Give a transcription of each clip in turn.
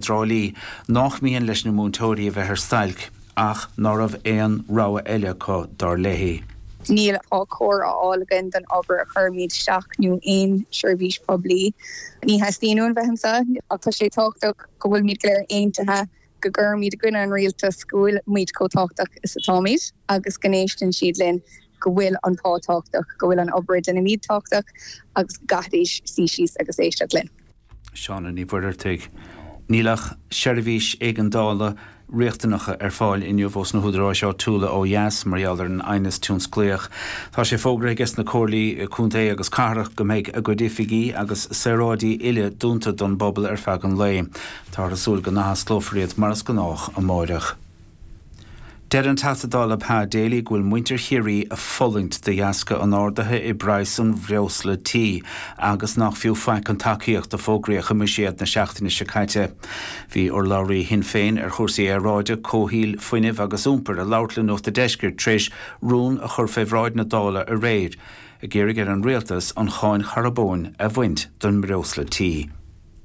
Trá Lí, nach mian leis na múinteoirí a bheith ar stailc, ach ná raibh aon rogha eile acu, dar léi. Níl pá cóir á fháil againn don obair a chuirimíd isteach nó aon seirbhís poiblí. Ní theastaíonn uainn bheith anso, ach tá sé tábhachtach go bhfuilimíd go léir aontaithe go gcuirfimíd i gcoinne an rialtas, go bhfuilimíd chomh tábhachtach is atáimíd agus go n-éisteann siad linn. go bhfuil an pá tábhachtach, go bhfuil an obair a deinimíd tábhachtach agus go gcaithfidís suí síos agus éisteacht linn. Shauna Ní Mhuircheartaigh, Níl ach seirbhísí éigeandála riachtanacha ar fáil inniu ós na húdaráis áitiúla ó dheas mar gheall ar an aighneas tionsclaíoch. Tá sé fógraithe ages na comhairlí contae agus cathrach go mbeidh a gcuid oifigí agus saoráidí uile dúnta don bpobal ar feadh an lae. Táthar ag súil go n-athosclófar iad mar is gnách amárach. Deir an Teachta Dála Pa Daly go bhfuil muintir Chiarraí ag fulaingt de dheasca an ardaithe i bpraghas an bhreosla tí agus nach fiú faic an tacaíocht a fógraíodh i mbuiséad na seachtaine seo caite. Bhí urlabhraí Shinn Féin ar chúrsaí aeráide, comhshaoil, fuinnimh agus iompair ag labhairt le Nuacht a' Deiscirt tar éis rún a chur fé bhráid na Dála aréir ag iarraidh ar an Rialtas an cháin charbóin a bhaint den mbreosla tí.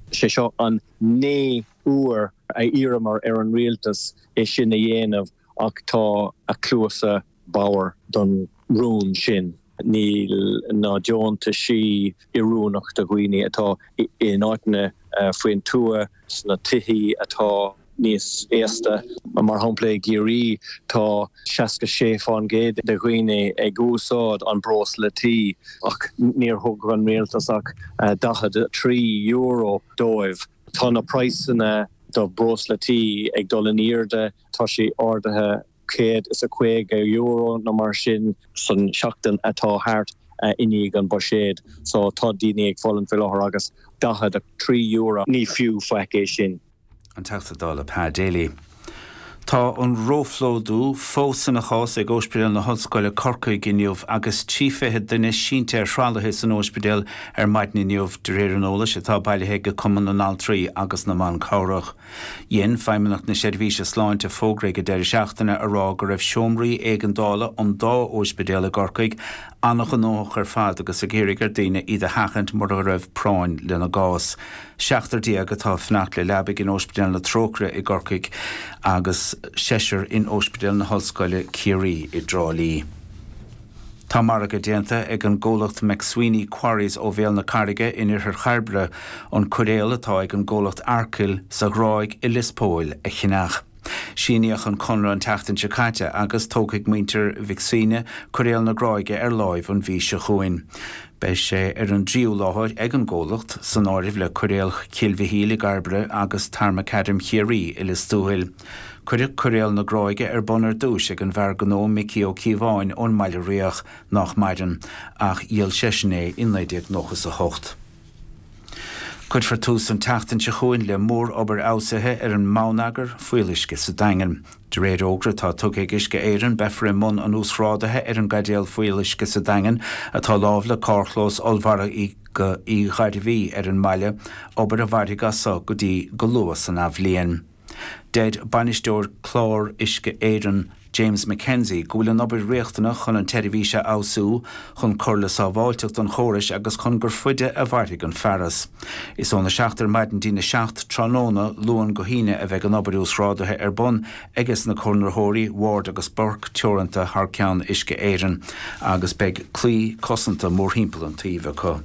Sé seo an. Naoú uair a iarramar ar an rialtas é sin a dhéanamh ach tá a cluasa bodhar don rún sin. Níl na deontaisí oiriúnach do dhaoine atá in áiteanna faoin tuath, sna tithí atá níos aosta. Mar shampla i gCiarraí tá seasca sé fán gcéad de dhaoine ag úsáid an breosla tí ach níor thug an rialtas ach daichead a trí euro dóibh. Tá na praghsanna do breosla tí ag dul in aoirde, tá sé ardaithe céad is caoga euro nó mar sin san tseachtain atá thart i ndiaidh an buiséid so tá daoine ag fulaingt faoi láthair agus daichead a trí euro ní fiú faic é sin. An Teachta Dála Pa Daly. Tá an róphlódú fós ina chás ag Ospidéal na hOllscoile Corcaigh inniu agus trí fichid duine sínte ar thralaithe san ospidéal ar maidin inniu, de réir an eolais atá bailithe ag Cumann na nAltraí agus na mBan Cabhrach. Dhein Feidhmeannacht na Seirbhíse Sláinte fógra ag an deireadh seachtaine a rá go raibh seomraí éigeandála an dá ospidéal i gCorcaigh an-ghnóthach ar fad agus ag iarraidh ar daoine iad a sheachaint mura raibh práinn lena gcás. Seachtar déag atá ag fanacht le leabaigh in Ospidéal na Trócaire i gCorcaigh agus seisear in Ospidéal na hOllscoile Ciarraí i dTrá Lí. Tá margadh déanta ag an gcomhlacht McSweeney Quarries ó Bhéal na Carraige in Iarthar Chairbre an cairéal atá ag an gcomhlacht Arkil sa Ghráig i Lios Póil a cheannach. Síníodh an conradh an tseachtain seo caite agus tógfaidh muintir Mhic Suibhne coiréal na Gráige ar láimh an mhí seo chugainn. Beidh sé ar an dtríú láthair ag an gcomhlacht, san áireamh le coiréal Chill Mhichíl i gCairbre agus Tarmacadam Chiarraí i Lios Tuathail. Cuireadh coiréal na Gráige ar bun ar dtúis ag an bhfear gnó Micí Ó Cíobháin ón mBaile Riach, nách maireann, ach dhíol seisean é i 1998. Cuirfear tús an tseachtain seo chugainn le mórobair fheabhsaithe ar an mbonneagar fuíolluisce sa Daingean. De réir fhógra atá tugtha ag Uisce Éireann beifear i mbun an uasghrádaithe ar an gcaidéal fuíolluisce sa Daingean atá láimh le carrchlós ollmharadh Uí Ghairbhí ar an mbaile, obair a mhairfidh as so go dtí go luath san athbhliain. Deir Bainisteoir Clár Uisce Éireann, James McKenzie, go bhfuil an obair riachtanach chun an tseirbhís a fheabhsú, chun cur le sábháilteacht an chórais agus chun gur faide a mhairfidh an fearas. Is óna seacht ar maidin dtína seacht tráthnóna, Luan go hAoine, a bheidh an obair uasghrádaithe ar bun aige sna conraitheoirí, Ward agus Burke Teoranta thar ceann Uisce Éireann, agus beidh claí cosanta mórthimpeall an tsuímh acu.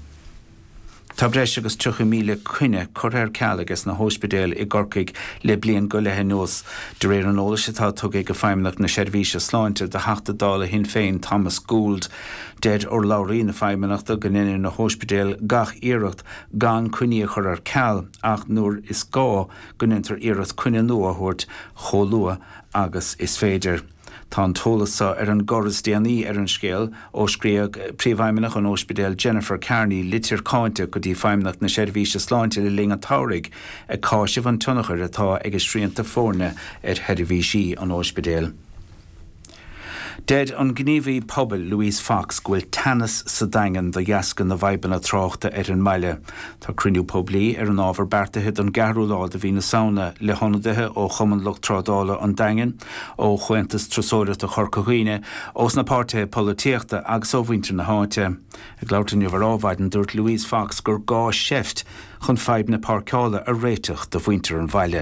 Tá breis agus 30,000 coinne curtha ar ceal aige sna hospidéil i gCorcaigh le bliain go leith anuas, de réir an eolais atá tugtha ag Feidhmeannacht na Seirbhíse Sláinte do Theachta Dála Shinn Féin Thomas Gould. Deir urlabhraí na Feidhmeannachta go ndeineann na hospidéil gach iarracht gan coinní a chur ar ceal ach nuair is gá go ndeintear iarracht coinne nua a thabhairt chomh luath agus is féidir. Tá an t-eolas seo ar an gcor is déanaí ar an scéal ó scríobh Príomhfheidhmeannach an ospidéil Jennifer Kearney litir cáinte go dtí Feidhmeannacht na Seirbhíse Sláinte le linn an tsamhraidh ag cáiseamh an tionchair atá ag a srianta foirne ar sheirbhísí an ospidéil. Deir an gníomhaí pobail Louise Fox go bhfuil teannas sa Daingean de dheasca na bhfadhbanna tráchta ar an mbaile. Tá cruinniú poiblí ar an ábhar beartaithe don gceathrú lá de mhí na Samhna le hionadaithe ó Chumann Lucht Trádála an Daingin, ó Chomhaontas Turasóireachta Chorca Dhuibhne, ós na páirtithe polaitíochta agus ó mhuintir na háite. Ag labhairt inniu ar Ádhmhaidin, dúirt Louise Fox gur gá seift chun fadhb na páirceála a réiteach do mhuintir an bhaile.